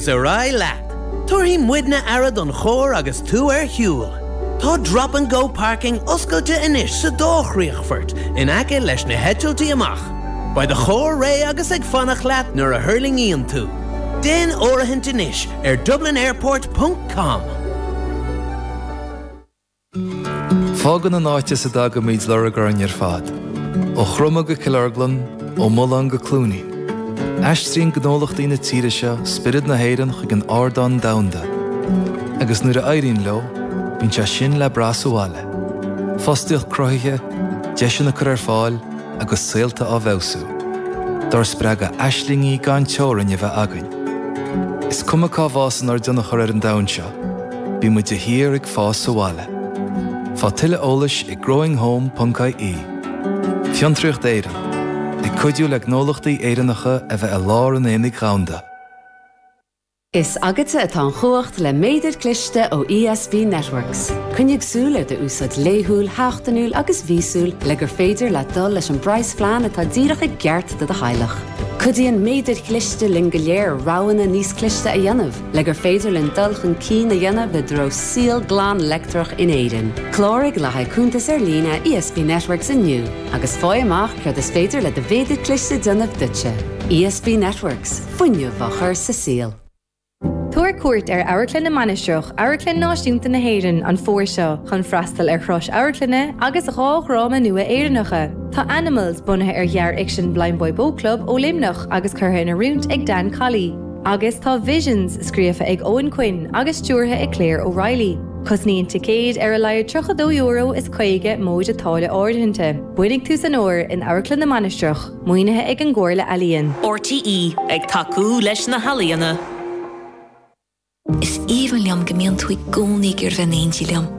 's ar aghaidh leat. Tabharfaidh muidne aire don charr agus tú ar shiúl. Tá Drop and Go Parking oscailte anois sa dá chríochfort in aice leis na heitiltí amach. Beidh do charr réidh agus ag fanacht leat nuair a thuirlingíonn tú. Déan áirithint anois ar dublinairport ponc com. Fágann an áit as a dtagaimid lorg orainn ar fad, ó Chromadh go Cill Orglan, ó Mulán go Cluainín. Aistríonn gnólachtaí na tíre seo spiorad na hÉireann chuig an ardán domhanda, agus nuair a éiríonn leo, bíonn sé sin le brath sa bhaile, fostaíocht cruthaithe, deiseanna curtha ar fáil agus saolta á bhfeabhsú. Dár spreagadh aislingí gan teorainn a bheith againn, is cuma cá bhfásann ár dtionchar ar an domhan seo. Bíonn muid de shíor ag fás sa bhaile. Faigh tuilleadh eolais ag growinghome.ie Fiontraíocht Éireann, ag cuidiú le gnólachtaí Éireannacha a bheith i lár an aonaigh dhomhanda. Is agatsa atá an chumhacht le méadar cliste ó ESB Networks. Coinnigh súil ar do úsáid laethúil, sheachtainiúil agus mhíosúil le gur féidir leat dul leis an bpraghasphlean atá díreach i gceart do do theaghlach. Cuidíonn méadair chliste linn go léir roghanna níos cliste a dhéanamh. Le gur féidir linn dul chun cinn a dhéanamh i dtreo saol glan leictreach in Éirinn, cláraigh le haghaidh cuntas ar líne ESB Networks inniu agus faigh amach céard is féidir le do mhéadar cliste déanamh duitse. ESB Networks, fuinneamh á chur sa saol. Tabhair cuairt ar Amharclann na Mainistreach, Amharclann Náisiúnta na hÉireann, an fómhair seo chun freastal ar thuras amharclainne agus dhá dhráma nua Éireannacha. Tá Animals bunaithe ar ghearrfhicsean Blindboy Boatclub ó Luimneach agus curtha in oiriúint ag Dan Colley. Agus tá Visions scríofa ag Eoghan Quinn agus stiúrtha ag Claire O'Reilly. Cosnaíonn ticéid ar a laghad €32 is 50 móide táille áirithinte. Bainigí sú as an bhfómhar in Amharclann na Mainistreach, maoinithe ag an gComhairle Ealaíon. RTÉ, ag tacú leis na healaíona. Is aoibhinn liom go mbíonn tú i gcónaí ag iarraidh bheith in éindí liom.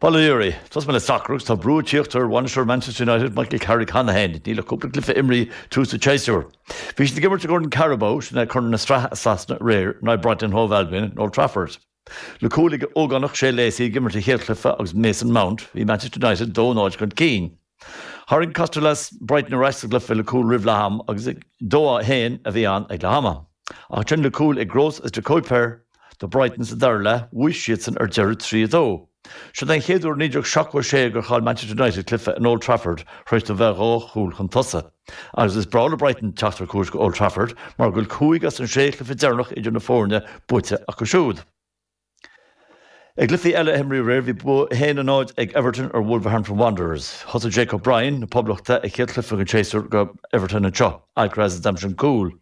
Bail ó Dhia oraibh, tosóidh mé le sacar agus tá brú ag tíocht ar bhainisteoir Manchester United, Michael Carrick cheana féin. Níl ach cúpla cluiche imrithe i dtús an tséasúir. Bhí siad ag imirt i gCorn Carabao, sin é Corn na Sraithe i Sasana, aréir in aghaidh Brighton Hove Albion in Old Trafford. Le cúil ag ógánach Shea Lacey ag imirt a chéad chluiche agus Mason Mount, bhí Manchester United 2 0 chun cinn. Tharraing Kostoulas Brighton ar ais sa gcluiche le cúl roimh leath ama agus 2-1 a bhí ann ag leath ama. Ach ansin le cúil ag Gross is De Cuyper do Brighton sa dara leath, bhuaigh siadsan ar deireadh 3-2. Siod é an chéad uair ó 1976 gur chaill Manchester United cluiche in Old Trafford tar éis a bheith dhá chúl chun tosaigh. Agus is breá le Brighton teacht ar cuairt go Old Trafford mar go bhfuil cúig as an sé chluiche deireanach idir na foirne buaite acu siúd. I gcluichí eile a himríodh aréir, bhí bua 1-0 ag Everton ar Wolverhampton Wanderers. Thosaigh Jake O'Brien na Poblachta a chéad chluiche den séasúr do Everton anseo, Alcaraz a d'aimsigh an cúl.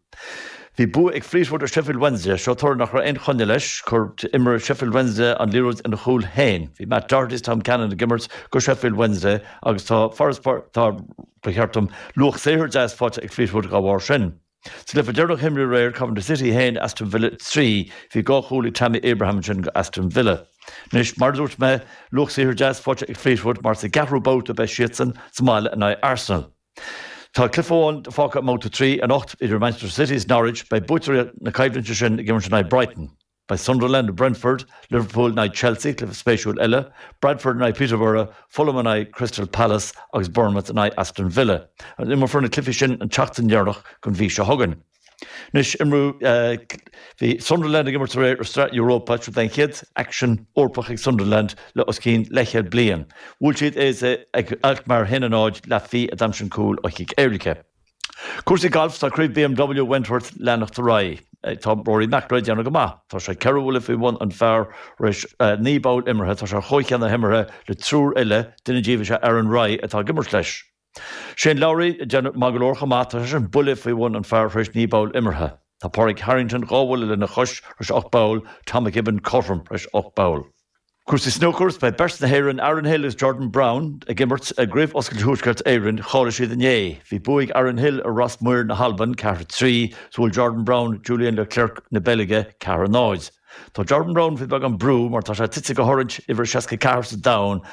Bhí bua ag Fleetwood ar Sheffield Wednesday, seo, toradh nach raibh aon choinne leis. Chuir imreoir Sheffield Wednesday an liathróid ina chúl féin. Bhí Matt Doherty is Tom Cannon ag imirt do Sheffield Wednesday agus tá, ba cheart dom, luach saothair deas faighte ag Fleetwood dá bharr sin. Sa gcluiche deireanach, a himríodh aréir Coventry City 1, Aston Villa 3. Bhí dhá chúl ag Tammy Abraham ansin do Aston Villa. Anois, mar a dúirt mé, luach saothair deas faighte ag Fleetwood mar sa gceathrú babhta beidh siadsan sa mbaile in aghaidh Arsenal. Tá cluiche amháin fágtha i mbabhta 3 anocht idir Manchester City is Norwich, beidh buaiteoirí na coimhlinte sin ag imirt in aghaidh Brighton. Beidh Sunderland in Brentford, Liverpool in aghaidh Chelsea, cluiche spéisiúil eile, Bradford in aghaidh Peterborough, Fulham in aghaidh Crystal Palace agus Bournemouth in aghaidh Aston Villa, agus imreofar na cluichí sin an tseachtain dheireanach den mhí seo chugainn. Anois, bhí Sunderland ag imirt aréir i Sraith Europa. Seo é an chéad aicsean Eorpach ag Sunderland le os cionn leithchéad bliain. Bhuail siad AZ Alkmaar 1-0, Le Fée a d'aimsigh an cúl ó chic éirice. Cúrsaí Gailf Tá Craobh BMW Wentworth ag leanacht ar aghaidh. Tá Rory McIlroy ag déanamh go maith. Tá sé ceithre bhuille faoi bhun an phar tar éis naoi bpoll imeartha. Tá sé ar chomhcheann na himeartha le triúr eile, duine díobh is ea Aaron Rai atá ag imirt leis. Shane Lowry ag déanamh maith go leor chomh maith. Tá seisean buille faoi bhun an phar tar éis naoi bpoll imeartha. Tá Pádraig Harrington dhá bhuille lena chois tar éis ocht bpoll, Tom McKibbin cothrom tar éis ocht bpoll. Cúrsaí snúcair, Beidh beirt na hÉireann, Aaron Hill agus Jordan Brown, ag imirt i gCraobh Oscailte Thuaisceart Éireann. Cháiligh siad inné. Bhí bua ag Aaron Hill ar Ross Muir na hAlban, ceathair trí, is bhuail Jordan Brown Julien Leclercq na Beilge, ceathair a náid. Tá Jordan Brown faoi bheagán brú mar tá sé tite go hOrange, uimhir a 64 sa domhan,